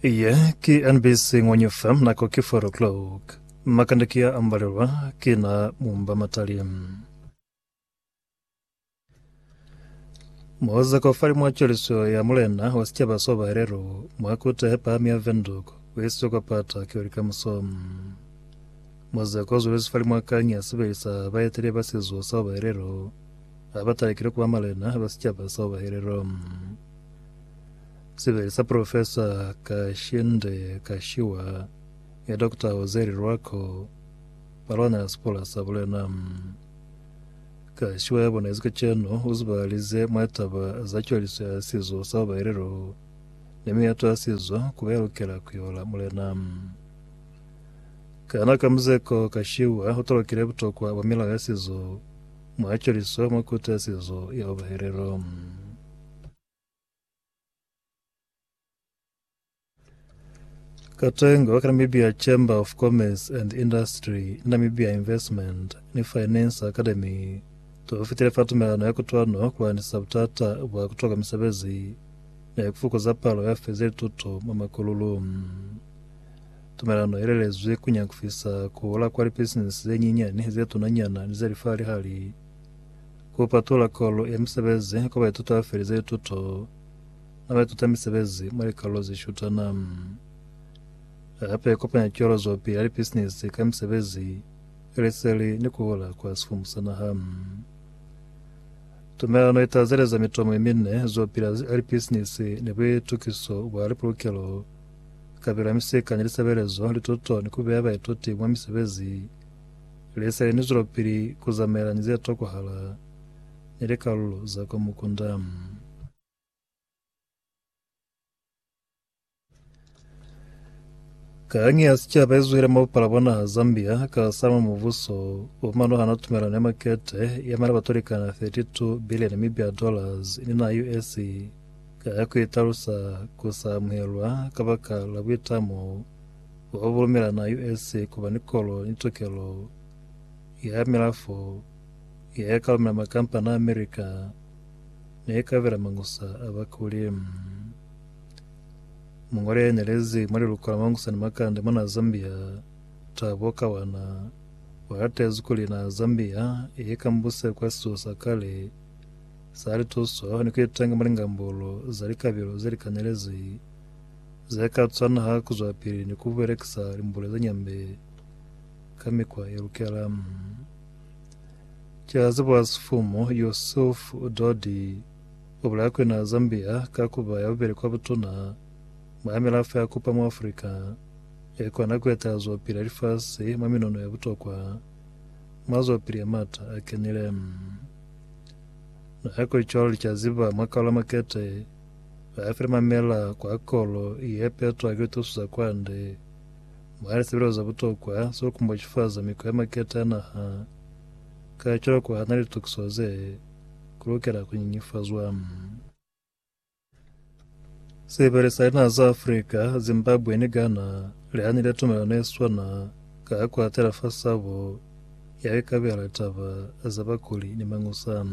Iye ki NBC Ng'onye FM nako ki 4 o'clock. Makande ki a ambalelwa ki na mumba matali. Moza kaufali mwa cweliso ya mulena wa sicaba so bahelelo mwa kuta he pahami ya Windhoek u isiwe kwa pata ki oli kamuso. Moza ka zwelezi fali mwa kanyi ya sibeli sa baetele ba sizo sa bahelelo ha ba talekile ku ba malena ba sicaba sa bahelelo. Sebele sa Profesa Kashinde Kashiwa ni Dokota Jose Lirwako ba lwana ya sipola sa bulena. Kashiwa ya bonezi kacenu u zibahalize mwa taba za cwaliso ya sizo sa babaelelo ni miyato ya sizo ku ba ya lukela ku yola mulena. Kana ka muzeko, Kashiwa u talukile butokwa bwa milao ya sizo mwa cwaliso mwa Kuto ya Sizo ya Babaelelo. Katengo wa ka Namibia Chamber of Commerce and Industry, Namibia Investment ni Finance Academy tofitile fa tumelano ya kutwano kuandisa butata bwa kutoka misebezi ni kufukuza palo ya fezi lituto mwa makululu. Tumelano ye lelezwi ku nyakufisa kuhola kwa lipisinisi zenyinyani, zetunanyana ni zelifa-lihali. Ku patulula kolu ya misebezi kwa baituti ba felize lituto na baituta misebezi mwa likalolo ze shutana. Hape kopanya cwelozopili ya lipisinisi ka misebezi ya liseli ni ku hola kwa sifumu sa naha. Tumelano itazeleza mitomo ye mine, zopili ya lipisinisi ni buitukiso bwa lipulukelo, kabelo ya misika ni lisebelezo, lituto ni ku beya baituti mwa misebezi. Lesele ni zwelapili ku zamaela ni ze tokwahala ni likalulo za kwa mukunda. Kangi ya sicaba izwile mwa bupala bwa naha Zambia ka salama mubuso wa manuhana tumelano ya makete ya mali batulikana 32 billion Namibia dollars ni na US ka ya kuitalusa kusamuhelwa kabaka la buitamo Wa bulumela na US kuba ni kolo ni tokelo ya ya milafo ya ya ka lumela makampani a America ne ya ka bela mangusa a bakuli. Mungwali ya nyelezi mwa liluko la mangusa ni makande mona Zambia, Thabo Kawana, wa latezi kuli naha Zambia i ikambuse kwa situlo sa kale sa lituso ni ku itanga mwa lingambulo za likabilo ze li kanyelezi Ze ka cwana ha ku zwapili ni ku belekisa limbule ze nyambe ka mikwa ye lukela. Ki a ziba Sifumu Yusuf Dodi, u bulaya ku ina Zambia ka ku ba ya bubeli kwa butuna mwa milafo ya kupa mwa Afrika ye kona ku etela zwapili ya lifasi mwa minono ya butokwa mwa zwapili ya m'ata a kenile. Nako i cwalo li ka ziba mwa Kaula Makete, Ba file mamela kwa kolo ye petwa ki litusu za kwande, mwa lisebelezo za butokwa za ku kumbochifaza mikwa ye maketa ya naha. Kacwalo ku hana litukiso ze, ku lukela ku nyinyifazwa. Sibeli sa linaha za Afrika, Zimbabwe ni Ghana, li hanile tumelano ye swana ka ku atela fa sabo ya ku ikabela litaba za bakuli ni mañusa.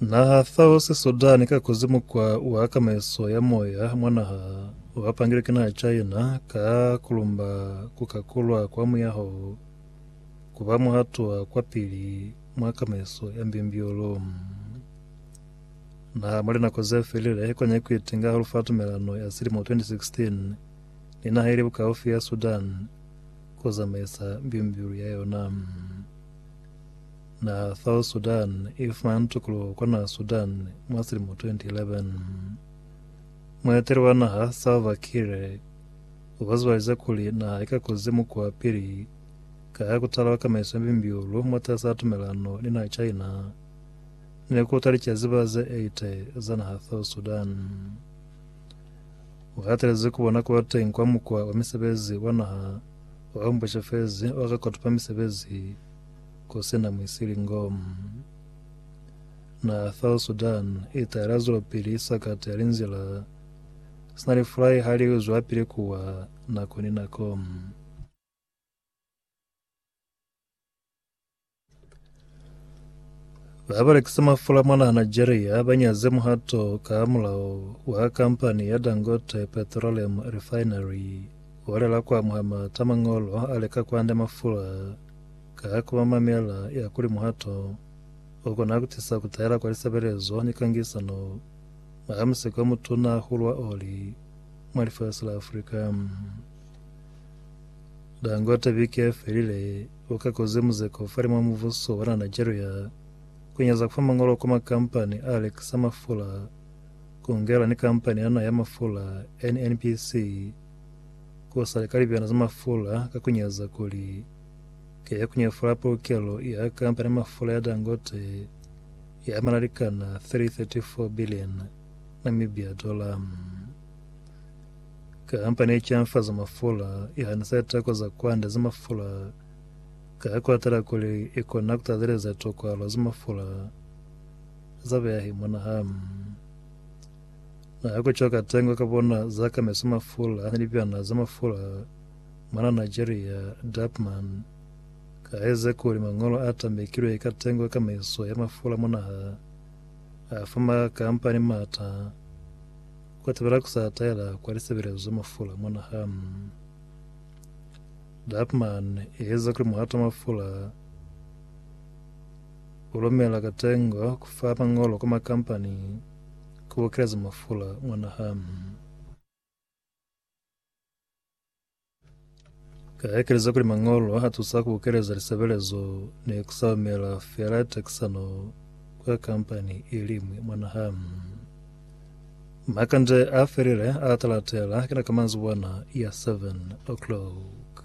Naha fao sisudani ka kuzimu kwa wa kamaiso ya moya mwa naha wa pangilwe ki naha China ka kulumba ku kakulwa kwa muyaho ku ba muhatwa kwa pili mwa kamaiso ya mbimbiolo. Naha mwa linako ze felile kwa nyaku itinga hahulu fa tumelano ya silimo 2016 ni naha ili bukaufi ya Sudan ku zamaisa mbilu-mbilu ya yona. Na South Sudan i fumana tukuluho kwa naha Sudan mwa silimo 2011. Mueteli wa naha Salva Kiir u kozobalize kuli naha i ka kuzi mukwa pili ka ha ku talwa kamaiso ya mbilu-mbilu mwatasaa tumelano ni naha China ni ku ta licaziba ze 80 za naha South Sudan. U hatelezi ku bona kuba teñi kwa mukwa wa misebezi wa naha o ambuša fezi o rekotopa misebezi ku si na muisilingo. Naha South Sudan i ta yela zwelopili sa kati ya linzila sina lifulai ha li zwelapili kuwa nako ni nako. Ba ba lekisa mafula mona Nigeria ba nyaze muhato ka mulao wa kampani ya Dangote Petroleum Refinery o lela ku amuha mata mangolo a leka ku anda mafula ka ku ba mamela ya kuli muhato o kona ku tisa ku tahela kwa lisebelezo ni kangisano mwa musiko o mutuna hahulu wa oli mwa lifasi la Afrika. Dangwata biki ya felile uka koze muzeko ufali mwa muvuso wa na Nigeria kunyeza kufa mangolo kwa makampani a lekisa mafula kungela ni kampani yana ya mafula NNPC kusali ka libiyana za mafula ka kunyeza kuli ke ya kunyefula pulukelo ya kampani ya mafula ya Dangote ya manalikana 334 billion Namibia dollar. Kamba ne ca nfa za mafula, ya ni sa tako za kwanda za mafula, ka ku atela kuli i kona ku tateleza tokwalo za mafula za beahi mwa naha. Na ku cwa katengo ka bona za ka meso mafula a ni libyana za mafula mwana Nigeria, Dapman, ka eze kuli mañolo a tambekilwe ka tengo ka meso ya mafula mwa naha a fa makampani mata. Kwa tebela ku sa taela kwa lisebelezo za mafula mwa naha, Dappmann i eza kuli muhato wa mafula u lumela ka tengo ku fa mañolo kwa makampani ku bokeleza mafula mwa naha. Ka ekeleza kuli mañolo a tusa ku keleza lisebelezo ne ku saumela fela tekisano kwa kampani i liñwi mwa naha. Makande a felile a talatela kina ka manzibwana ya 7 o'clock.